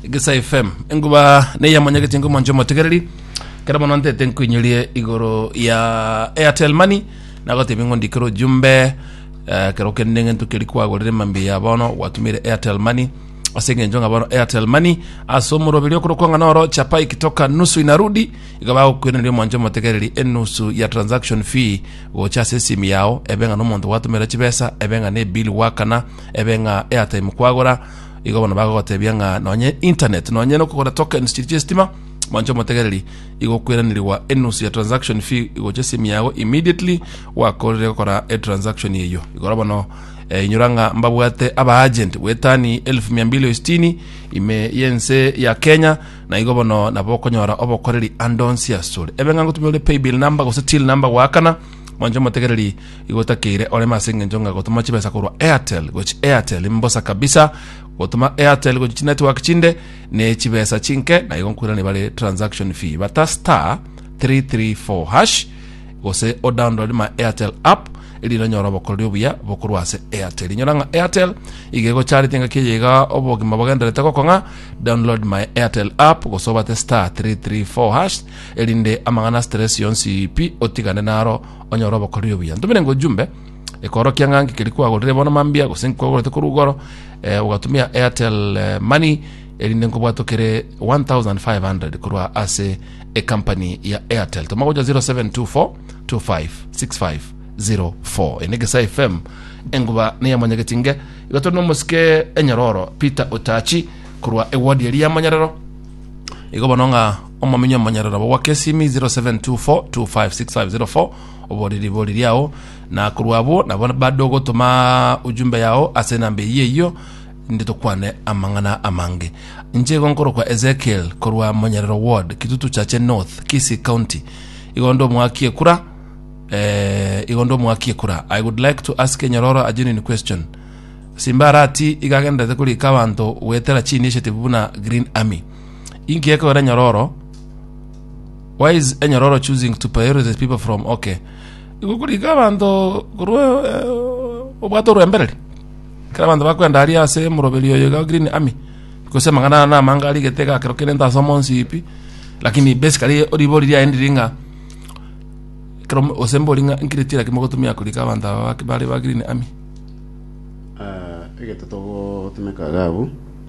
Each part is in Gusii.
Egesa FM enguba neyamonyagete ngo mwanche omotegereri kera mono ntete nkoinyerie igoro ya Airtel Money nagotebi ngo ndikere ojumbe eh, kero kende ngento keri kwagorire mambi ya bono gwatumire Airtel Money ase eng'encho ng'a bono Airtel Money ase omoroberi okorokwa ng'a noro chapa ikitoka nusu inarudi iga bagokweneria omwanche omotegereri enusu ya transaction fee gocha ase esimu yao ebe ng'a nomonto gwatumera chibesa ebe ng'a ne bill gwakana ebe ng'a airtime kwagora igo bono bagogotebia ng'a nonye internet nonye nokogora tokens chiri chiestima manche omotegereri igokweranirigwa enusu ya transaction fee igocha esimi yago immediately wakorire gokora etransaction eyo igoro bono eh, inyora ng'a mbabwate abaagent bwetani 1260 ime yense ya kenya na igo bono nabo okonyora obokoreri andonsi asore ebe ng'a ngotumia ore paybill number gose till number goakana manche omotegereri igotakeire oreme ase engencho ng'a gotoma chibesa korwa Airtel gochi Airtel imbosa kabisa gotoma Airtel gochi chinetwork chinde ne chibesa chinke na igo nkwirani bare transaction fee bata star 334 hash gose o download ma Airtel app erinde onyora obokoreri obuya bokorwa ase Airtel inyora ng'a Airtel iga egocharete engaki eye iga obogima bogenderete gokong'a download my Airtel app gose obate star 334 hash erinde amang'ana stress yonsi pi otigane naro Onyore obokoreri obuya. Ntumire ng'a ojumbe ekoorokia ng'a nki keria kwagorire bono mambia gose nki kwagorete korwa igoro eh, ogatumia Airtel eh, Money erinde nkobwatwa kere 1500 korwa ase ecompany ya Airtel. Toma gocha 0724 256504 ene Gesa FM enguba ne yamonyegeti nge igatore nomosike enyororo Peter Otachi korwa ewodi eri yamonyerero igo bono ng'a Omominyo omonyaroro obo gwa Kesimi 0724256504 oboriri boriri ao na korwa abwo nabo bado gotoma ujumbe yao ase enamba eyio eyio inde tokwane amang'ana amange inche igo nkorokwa Ezekiel korwa Monyarero Ward Kitutu Chache North Kisii County igo ndi omwaki ekura eh, igo ndi omwaki ekura I would like to ask enyororo a genuine question Simba arati igagenderete korika abanto gwetera chini eshetibu buna Green Army Inki ekogera enyororo? Why is enyororo choosing to prioritize people from okay? Igo korika abanto korwa eh, obwate orwembereri. Kera abanto bakwenda aria ase moroberi oyo ga Green Army. Gose amang'ana na amanga arigete gakero kere nta ase omonsi ipi. Lakini basically oribori riaendi ringa kero gose mbori ng'a nkiriti lakini mogotumia korika abanto aba bak- bare ba Green Army. Ah, egete togotumeka gabu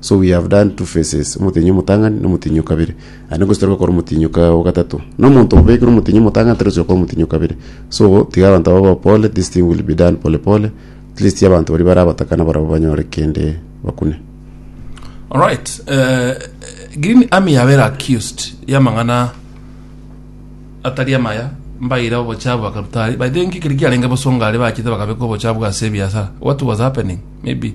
So we have done two faces, omotenyi omotang'ani na omotenyi o kabere. Aye ningwe totari gokora omotenyi oka- o gatato. Na omonto obe ekero omotenyi omotang'ani tari gochia gokora omotenyi o kabere. So tiga abanto babe abapore, this thing will be done pole pole, at least abanto baria bare abatakana barabwo banyore kende bakune. Alright, eh, Green Army yabera accused y'amang'ana atari amaya mbaire obochabu bakarutari by the way, nki keri kiarenge bosonga aria bachete bakabeka obochabu ase ebiasara what was happening maybe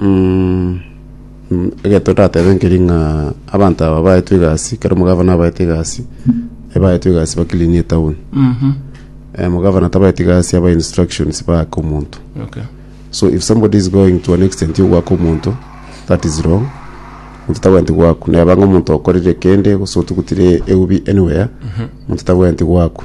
Mm, mm, egento ndatebe nkeri ng'a abanto aba baetwe egasi kero omogavana abaete egasi ebaetwe egasi bakilinie etown Mhm. eh, omogavana tabaeti egasi aba instructions baake omonto Okay. so if somebody is going to an extent yogwaka omonto that is wrong omonto tabweenti gwaku neba ng'a omonto okorire kende gose otugutire eubi anywhere omonto tabweenti gwaku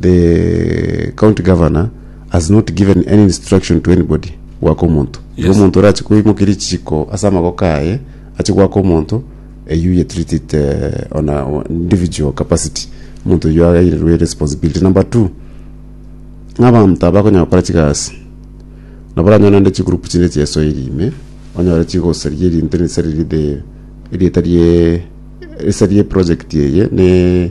The county governor has not given any instruction to anybody goaka omonto. Tiga Yes. omonto orache koimokeria echiko ase amagoko aye ache goaka omonto eyio ye treat it eh, on a on individual capacity. Omonto oyio airerwe responsibility. Number two, ng'a abanto aba bakonyara gokora chigasi nabo oranyore naende chigroup chinde chiesoiri ime onyore chigosaria erinto risa riria the erieta rie risa rie project eye ne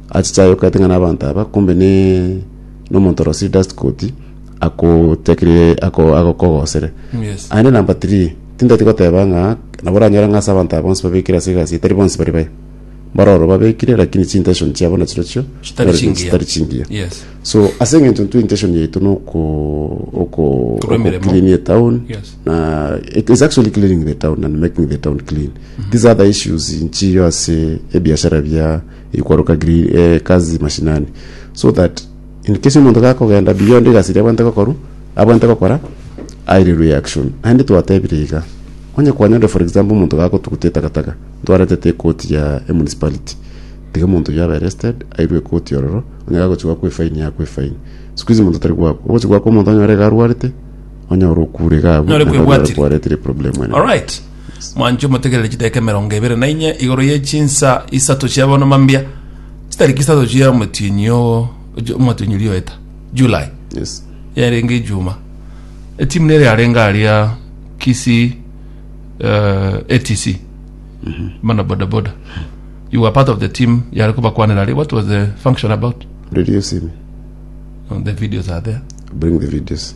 Achiche aye okaete ng'a nabaanto aba, kombe ne nomonto orosie dust coat, akotekirie ako agokogosere. Yes. Aende number three, tintati goteba ng'a nabo oranyore ng'a ase abanto aba bonsi babekire ase egasi eye tari bonsi bari baye. Mbaroro babekire lakini chintention chiabo nachirochio Chitari nero chingiya. chitari chingiya. Yes. So ase eng'encho intwe intention yaito noko oko Korwa emeremo. clean etown Yes. na it is actually cleaning the town and making the town clean. These other issues nchiyo ase ebiashara bia ikwaruka giri eh, kazi mashinani so that in case omonto gakogenda beyond egasi eria abwante gokoru abwante gokora aire reaction naende twatebire iga onye kwanyore for example omonto gagotugutia etakataka ntwaretete ekoti ya emunicipality tiga omonto oyio abe arrested airwe ekoti ororo onye gagochi gwakwa efaini yakwa efaini siku hizi omonto tari gwakwa ogochi gwakwa omonto onyore iga arwarete onye ore okure iga abwo Nore naende onyore kwebwatire. kwarete ere problem ene alright Mwanche omotegerere chidaeka emerongo ebere na inye igoro ye chinsa isato chia bono mambia, chitariki isato chia omotienyi o ojo- omotienyi oria oeta July, Yes. yarenge ejuma etimu nere yarenge aria Kisii eh, ATC mana bodaboda you were part of the team yare kobakwanera aria what was the function about Release him. the videos are there Bring the videos.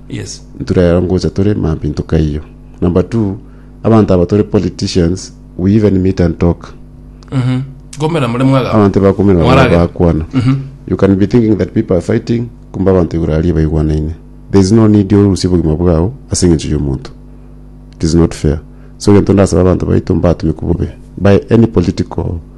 Yes. Nture ero ngocha tore mambi ntokaiyo. Number two, abanto aba tore politicians, we even meet and talk. Mhm. Komera more mwaga. Abanto bakumira bamwe Mwarage. bakwana. Mhm. You can be thinking that people are fighting, kumbe abanto igoro aria baigwanaine. There is no need orusie obogima bwao ase eng'encho y'omonto. It is not fair. So egento ndasaba abanto baito mbatumekwe bobe by any political